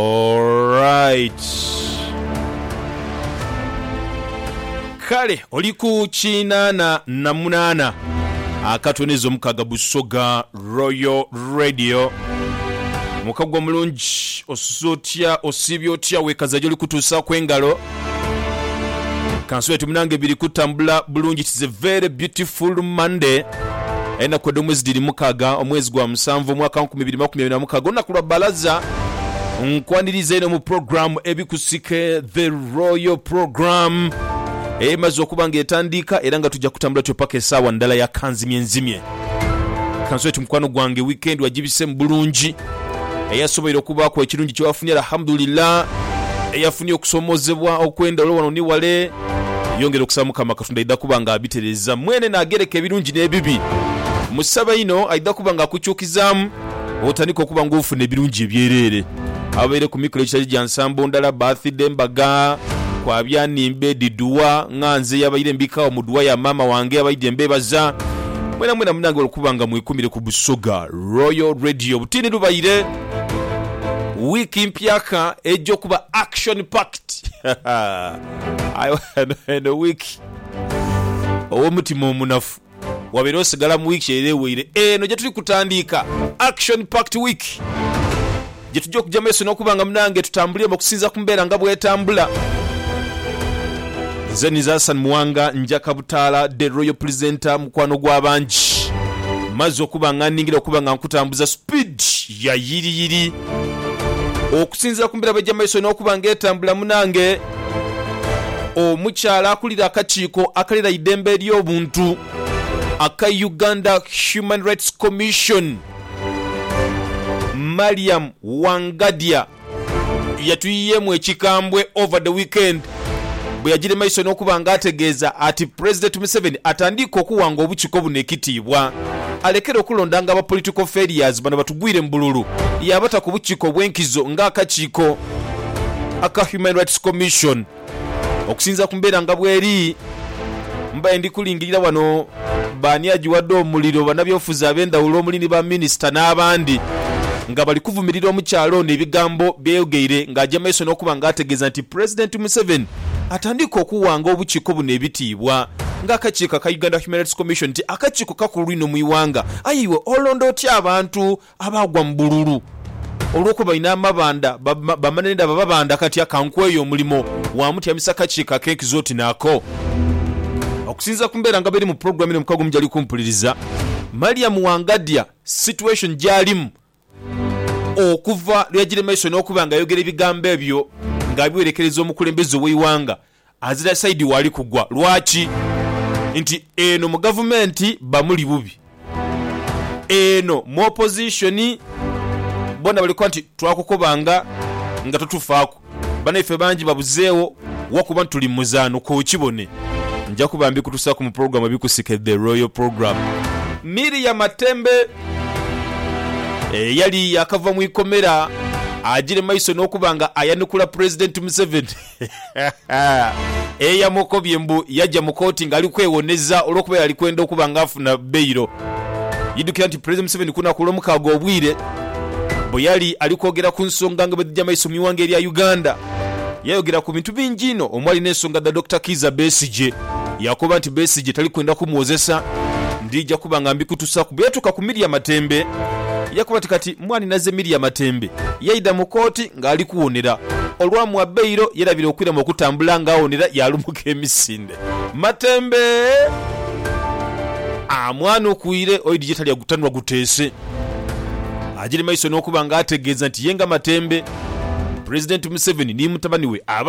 Alright. Kale oli ku kinaana na munaana akatoniza omukaaga Busoga Royal Radio. Mukago omulungi, osuze otya, osiibye otya, wekaza gyoli kutuusaaku engalo. Kansule ti munange biri kutambula bulungi it's a very beautiful Monday enaku edhomwezi dhiri mukaga omwezi gwa musanvu omwaka nkumi biri makumi abiri na mukaga olunaku lwa balaza nkwaniriza ino mu program ebikusike the royal program emaze okuba nga etandiika era nga tuja kutambula tutyo paka esawa ndala ya kanzimye nzimye. Kansobe oti mukwano gwange weekend wagibisemu bulungi. Eyasoboire okubaaku ekirungi kyewafunye Alhamdulillah. Eyafunye okusomozebwa okwendhawulo wano ni wale yongera okusaba mukama katonda aidha kuba nga abitereza. Mwene nagereka ebirungi nebibi. Musabe inho aidha kuba nga akukyukizamu. otandika okuba ng'ofuna ebirungi ebyereere. Ababaire ku mikolo egitali gya nsambo ndala, baathide, mbaga, kwabya nhimbe, dhi dua, ng'ha nze eyabaire mbikagho mu dua ya maama wange abaidhi mbeebaza. Mwenamwena munange olw'okuba nga mwekumire ku Busoga Royal Radio, obutiini lubaire wiiki mpyaka eja okuba action packed. Aye eno wiiki ow'omutima omunafu. wabeire osigala mu wiiki eyo eweire. Eno gyetuli kutandiika Action Packed Week gyetugya okugya mumaiso n'okuba nga munange tutambuliemu okusinziira ku mbeera nga bwetambula. Nze Niza Hassan Muwanga Nja Kabutaala The Royal Presenter mukwano gw'abangi maze okuba nga nningira okuba nga nkutambuza speed ya yiriyiri okusinziira ku mbeera bwegya mumaiso n'okuba nga etambula munange. Omukyala akulira akakiiko akalera eidembe ely'obuntu aka Uganda Human Rights Commission, Mariam Wangadya yatuyiyeemu ekikambwe over the weekend bwe yagiire maiso n'okuba nga ategeeza ati Pulezidenti Museveni atandiike okuwanga obukiko buno ekitiibwa alekere okulondanga ba political failures bano batugwire mu bululu yaabata ku bukiko obw'enkizo nga akakiiko aka Human Rights Commission. Okusinzira ku mbeera nga bweri, mbaire ndi kulingirira wano baani agiwadde omuliro banabyobufuzi abendhawulo omuli ni ba minisita n'abandi nga bali kuvumirira omukyala ono ebigambo byeyayogeire nga agya maiso n'okuba nga ategeeza nti Pulezidenti Museveni atandiike okuwanga obukiiko buno ebitiibwa nga akakiiko aka Uganda Human Rights Commission nti akakiiko kakulu inho mu iwanga aye iwe olonda otya abantu Abaagwa mu bululu olw'okuba inho amabandha bamanha ni dhaba babandha kati akankweyo omulimo wa mutyamisa kakiiko ak'enkizo oti naako. Okusinziira ku mbeera nga bweri mu pulogulaamu eno omukago omujali kumpuliriza, Mariam Wangadya situation gy'alimu okuva lweyagire mu maiso n'okuba nga ayogera ebigambo ebyo nga abiwerekereza omukulembeze ow'eighanga Azira side wali kugwa lwaki nti eno mu gavumenti bamuli bubi eno mu opposition bona bali kukoba nti twakukobanga nga totufaaku banaife bangi babuzeewo wa kuba nti tuli mu muzaano kokibone nja kuba mbikutusaku mu program ebikusike the royal program. Miria Matembe eyali yakava mu ikomera agire maiso nokuba nga ayanukula president Museveni. Eyamukobye mbu yaja mu kooti nga ali kwewoneza olwokuba yali kwenda okuba nga afuna bailo. Idukira nti Pulezidenti Museveni kulunaku olwomukaaga obwire bweyali ali kwogera ku nsonga nga bwedhija maiso mu ighanga erya Uganda, yayogera ku bintu bingi inho omwali nensonga dha Dokita Kiiza Besigye. Yakoba nti Besigye tali kwenda kumwozesa, ndhija kuba nga mbikutusaku. Bweyatuuka ku Miria Matembe yakoba nti kati mwani naze Miria Matembe yaidha mu kooti. ng'ali kuwunira. Olwa mwabbairo yerabira okwirema okutambula ng'awunira yaalumuka emisinde. Matembe! Aa mwana okwire oidhi gye tali agutanhwa guteese. Agiri maiso n'okuba ng'ategeeza nti ye nga Matembe, Pulezidenti Museveni ni mutabani we aba.